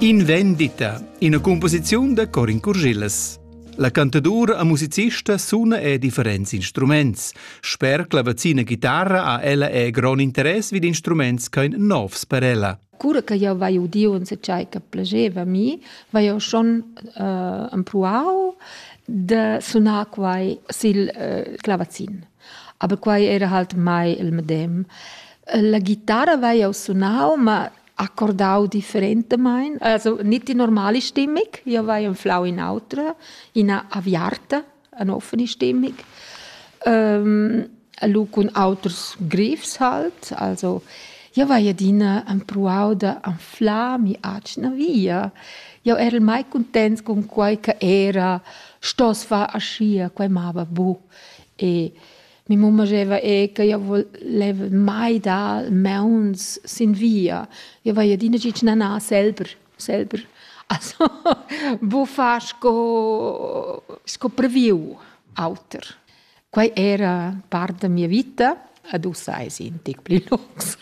In vendita, ina cumposiziun da Corin Curgillas. La cantadura e musicista suna e differents instruments. Sper clavazina chitarra ha ella e grond interess vid instruments ch'ein novs per ella. Cura che jau vai udiu en tgei che plageva mi, vai jau schon uh, empruau de sunar quai sil uh, clavazin. Aber quai era halt mai il medem. La ghitara vai jau sunau, ma accordau differentamain, also nicht die normale Stimmung. Io vai anflau in autra, ina aviarta, eine offene Stimmung. Ähm, lu cun auters grifs halt, also io vai adina empruau da anflar mi atgna via. Io era mai contents con quai che era, stos far aschia, quai mava bu. E mia mamma diceva eh, che io voleva mai dar mauns sin via. Io vai adina gitg nanar selber, selber. Also, bu far sco, sco previu auter. Quai era part da mia vita, ad ussa è un tic pli lungs.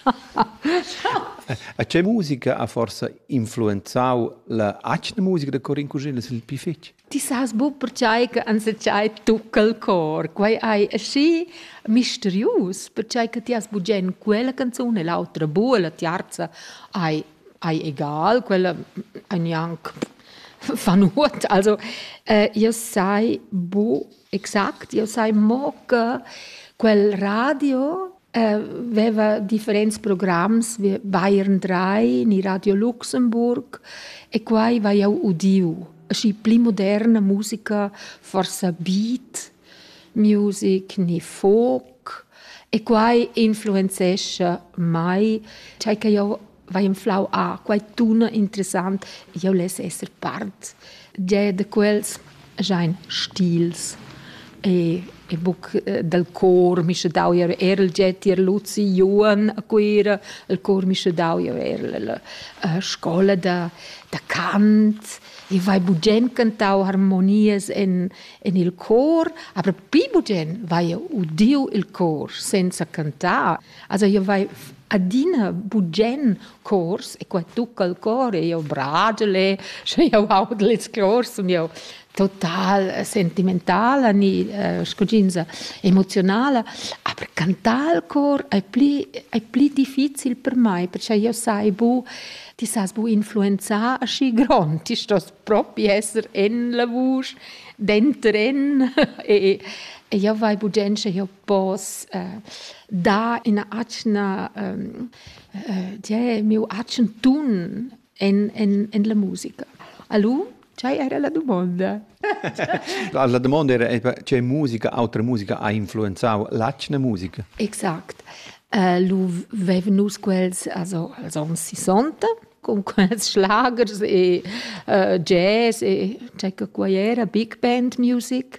A che musica ha forse influenzau la atgna musica da Corin Cusin, il più fetg? Ti sas buc pertgei che enzatgei tucca il cor. Quei ei aschi misterius, pertgei che ti has bugen quella canzun e l'autra bu, la tiarza ei, ei egal, quella ei gnanc fa nuot. Also, äh, io sai bu Exact, jeu sai mo che quel radio veva differents programs, Bayern 3, ni Radio Luxemburg e quai vai jeu udiu. Aschi pli moderna musica, forsa beat music ni folk e quai influenzescha mei, tgei che jeu vai inflau a quai tuna interessant, jau less esser part. Già da quels jain stils e, e buc eh, dal cor mi sche dau ir er il jet ir Luzi Juan a Cuira, il cor mi sche dau ir er la eh, scola da, da cant e vai bugen cantau harmonias en, en il cor, aber pi bugen vai udiu il cor senza cantar. Also io vai adina bugen cors e qua tucca il cor e io bragel e sche io audel ils cors sun io total sentimentala ni uh, scuginza emozionala aber cantar il cor è pli è pli difficil per mai perché io sai bu ti sas bu influenzar aschi grond ti stos propi esser en la vusch dentren e e io vai bugen sche io pos eh, dar ina atgna ehm, eh, miu atgn tun en, en, en la musica. Alu, ce era la domanda? la domanda era ce musica, autra musica ha influenzau l'atgna musica. Exact. Uh, lu veven nus quels also als ons 60 con quels schlagers e uh, jazz e c'è che qua era big band music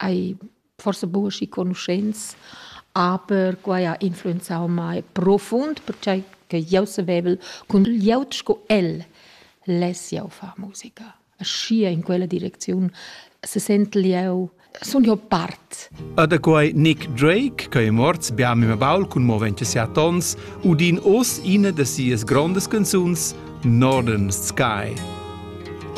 Hai forsa buca aschi conuschents, aber quai ha influenzau mei profund, pertgei che jeu savevel cun glieud sco el less jeu far musica. Aschia in quella direcziun sesentel jeu, sun jeu part. E da quei Nick Drake, che è morts bia mia baul cun mo 27 onns, udin oz ina da sias grondas canzuns, Northern Sky.